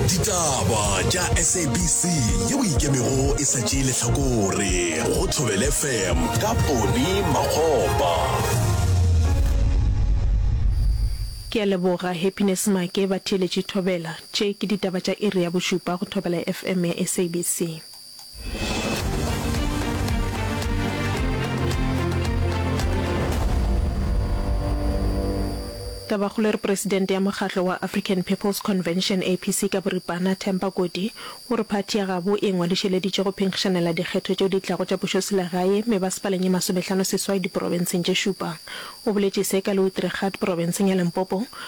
Ditaba tša SABC yeo e ikemego e sa tšee lehlakore go Thobele FM ka Poni Makgopa. Ke a leboga Happiness Make, batheeletši Thobela. Tše ke ditaba tša iri ya bošupa go Thobela FM ya SABC. Tabakgolo e re Presidente ya mokgatlo wa African People's Convention, APC, ka boripana, Temba Kodi, o re phathi ya gabo e ngwadišeleditše go phenkgišanela dikgetho tšeo di tlago tša pušoselegae me ba sepaleng ye masomehlano seswai diporobenseng tše šupa. O boletše se ka Louisdrigat porobenseng ya Limpopo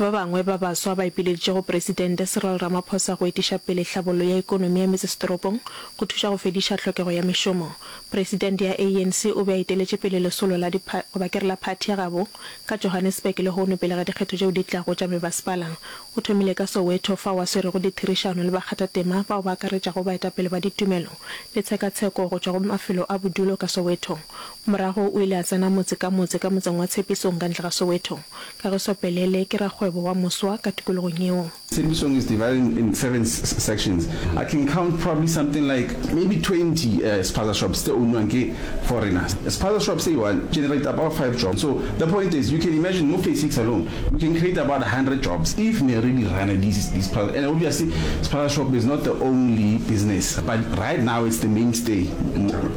Ba bangwe ba baswa ba ipileditše go Presidente Cyril Ramaphosa go etiša pele tlhabollo ya ekonomi ya metsesetoropong go thuša go fediša tlhokego ya mešomo. Presidente ya ANC o be a eteletše pele lesolo la di goba ke re la phathi ya gabo ka Johannesburg lehono pele ga dikgetho tšeo di tlago tša mebasepala. O thomile ka Soweto fao a swerego ditherišano le bakgathatema bao ba akaretšago baetapele ba ditumelo le tshekatsheko go tšwa go mafelo a bodulo ka Soweto. Morago o ile a tsena motse ka motse ka motseng wa Tshepisong ka ntle ga Soweto. Kagiso Pelele ke rakgwebo wa moswa ka tikologong yeo. Tshepisong is divided in seven sections, I can count probably something like maybe twenty spaza shops tse ownwang ke foreigners. Spaza shop se i-one generate about five jobs, so the point is you can imagine mo phase six alone we can create about a hundred jobs if ne re di runner these these spaza and obviously spaza shop is not the only business but right now it's the mainstay.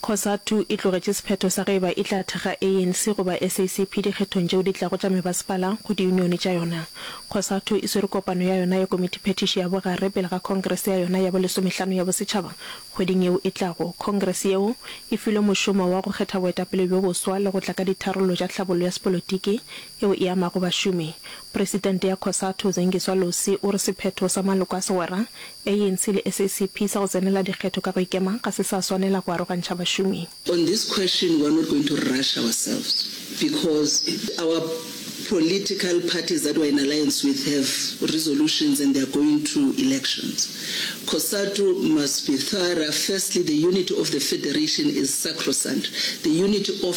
Cosatu e tlogetše sephetho sa ge e ba e tla thekga ANC goba SACP dikgethong tšeo di tlago tša mebasepala go diyunione tša yona. Cosatu e swere kopano ya yona ya komitiphethiši ya bogare pele ga khongrese ya yona ya bo lesomehlano ya bosetšhaba kgweding yeo e tlago. Khongrese yeo e filwe mošomo wa go kgetha boetapele bjo boswa le go tla ka ditharollo tša tlhabollo ya sepolotiki yeo e amago bašomi. Presidente ya Cosatu, Zengiswa Losi, o re sephetho sa maloko a segwera, ANC le SACP, sa go tsenela dikgetho ka go ikema ga se sa swanela go arogantšha bašomi. On this question we are not going to rush ourselves because our political parties that we are in alliance with have resolutions and they are going to elections. Cosatu must be thorough, firstly the unity of the federation is sacrosanct, the unity of.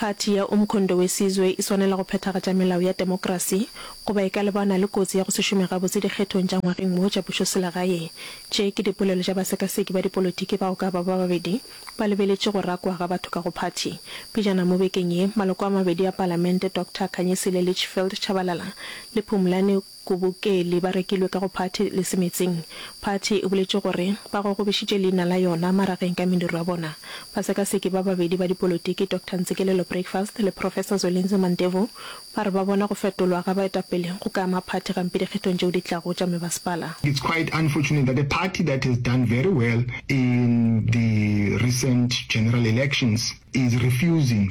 Phathi ya Umkhondo Wesizwe e swanela go phethagatša melao ya demokrasi goba e ka lebana le kotsi ya go se šome gabotse dikgethong tša ngwageng wo tša pušoselegae. Tše ke dipolelo tša basekaseki ba dipolotiki bao ka ba ba babedi ba lebeletše go rakwa ga batho ka go phathi. Pejana mo bekeng ye, maloko a mabedi a palamente, Doctor Khanyisile Litchfield Tshabalala le Phumlani Kobokeli ba rekilwe ka go party le semetsing. Party e boletše gore ba gogobišitše leina la yona marageng ka mediro ya bona. Basekaseki ba babedi ba dipolotiki Doctor Ntsikelelo Breakfast le Professor Zwelinzwi Mandevu ba re ba bona go fetolwa ga baetapele go ka ama party gampe dikgethong tšeo di tlago tša mebasepala. It's quite unfortunate that a party that has done very well in the recent general elections is refusing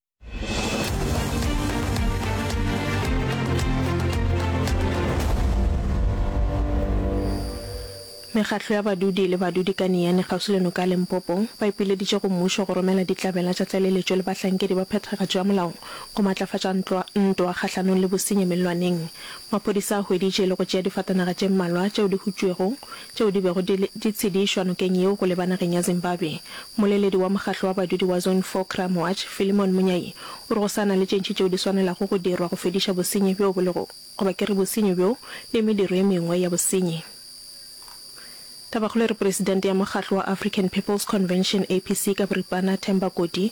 Mekgatlo ya badudi le badudi ka Niyane kgauswi le noka ya Limpopo ba ipileditše go mmušo go romela ditlabela tša tlaleletšo le bahlankedi ba phethagatšo ya molao go matlafatša ntwa ntwa kgahlanong le bosenyi mellwaneng. Maphodisa a hweditše le go tšea difatanaga tše mmalwa tšeo di hutšwego tšeo di bego di le di tshedišwa nokeng yeo go leba nageng ya Zimbabwe. Moleledi wa mokgatlo wa badudi wa Zone Four Crime Watch, Philemon Munyai, o re go sa na le tše ntši tšeo di swanelago go dirwa go fediša bosenyi bjo bo lego goba ke re bosenyi bjo le mediro ye mengwe ya bosenyi. Tabakgolo e re Presidente ya mokgatlo wa African People's Convention, APC, ka boripana, Themba Koti,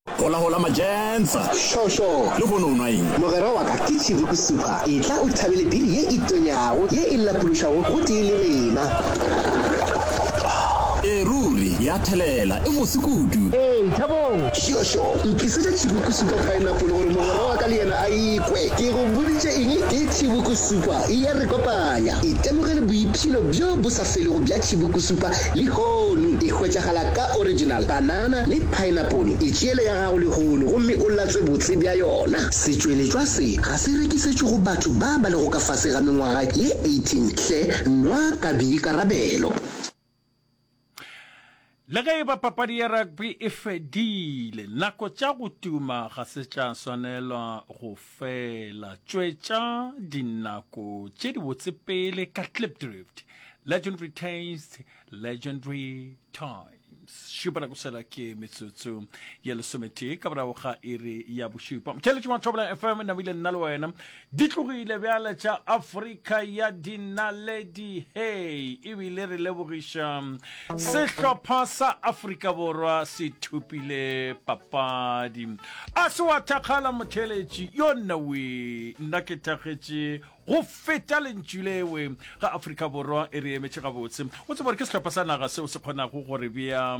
Hola hola Majensa. Šo šo. Le hono o nwa eng? Mogwera wa ka ke Tšhiriku Super. Etla o thabele biri ye e tonyago, ye e lapološago gotee le rena. Ee ruri, ya thelela. E mose kudu. Ee, thabong. Šo šo. Ntlisetša Tšhiriku Super Pineapple gore mogwera wa ka le yena a e kwe. Ke go boditše eng? Ke Tšhiriku Super. E ya re kopanya. Itemogele boiphilo bjo bo sa. se lego bja tšhibukusupa lehono e hwetšagala ka original panana le paenapole. E tšeele ya gago lehono gomme o latswe botse bja yona. Setšweletšwa se ga se rekisetšwe go batho ba ba lego ka fase ga mengwaga ye 18 hle, nwa ka boikarabelo. Le ge e ba papadi ya rugby e fedile, nako tša go tuma ga se tša swanelwa go fela. Tšwetša dinako tše dibotse pele ka Klipdrift, Legendary Taste, Legendary Times. Šupa nako sela ke metsotso ya lesometee ka morago ga iri ya bošupa. Motšheletši wa Thobela FM, Namile nna le wena Di tlogile bjale tša Afrika ya Dinaledi hei, ebile re lebogiša sehlopha sa Afrika Borwa se thopile papadi. A se wa thakgala motheeletši yo nnawe, nna ke thakgetše go feta lentšu lewe ga Afrika Borwa e re emetše gabotse. O tseba gore ke sehlopha sa naga seo se kgonago gore bea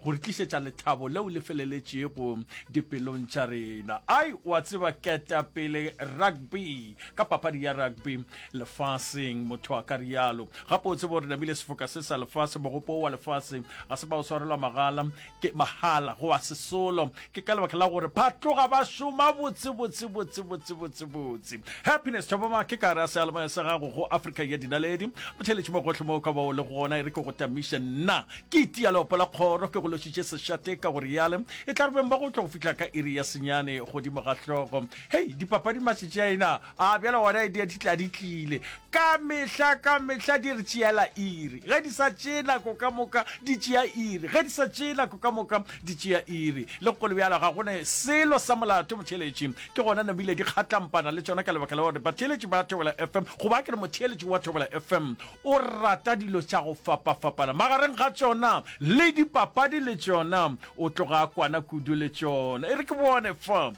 go re tlišetša lethabo leo le feleletšego dipelong tša rena. Ai, o a tseba, ketapele rugby ka papadi ya rugby lefaseng, motho a ka rialo. Gape o tseba gore namile sefoka se sa lefase, mogopo wa lefase ga se ba o swarelwa magala, ke mahala, go a sesolo. Ke ka lebaka la gore ba tloga ba šoma botse, botse, botse, botse, botse, botse. Happiness Tšhaboma, ke ka re a sealemaya sa gago go Afrika ya Dinaledi. Motheeletši mo gohle mo o ka ba o le gona, e re ke go tamiše. Nna ke itia leopo la kgoro, ke go lošitše sešate ka go reale. E tla re beng ba go tlo go fihla ka iri ya senyane godimo ga hlogo. Hei, dipapadi matšatši a ena! A bjale gona e diatitla di tlile, ka mehla, ka mehla di re tšeela iri. Ge di sa tšee nako ka moka di tšea iri, ge di sa tšee nako ka moka di tšea iri. Le go le bjalo ga go ne selo sa molato motheeletši. Ke gona ne bile di kgatlampana le tšona ka lebaka la gore batheeletši ba Thobela FM, goba ke re motheeletši wa Thobela FM o rata dilo tša go fapafapana. Magareng ga tšona le dipapadi le tšona o tloga a kwana kudu le tšona. E re ke bone fa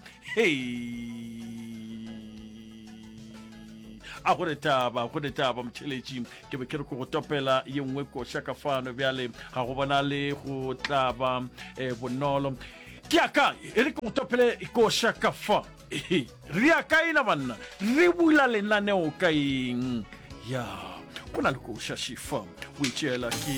a go retaba go retaba motšheletši ke be ke re ko go topela ye nngwe koša ka fano bjale ga go bona le go tlaba um eh, bonolo ke a kae e re ke go topele koša ka fa re ya kae na banna re bula lenaneo ka eng ya go na le koša šifa o e tšeela ke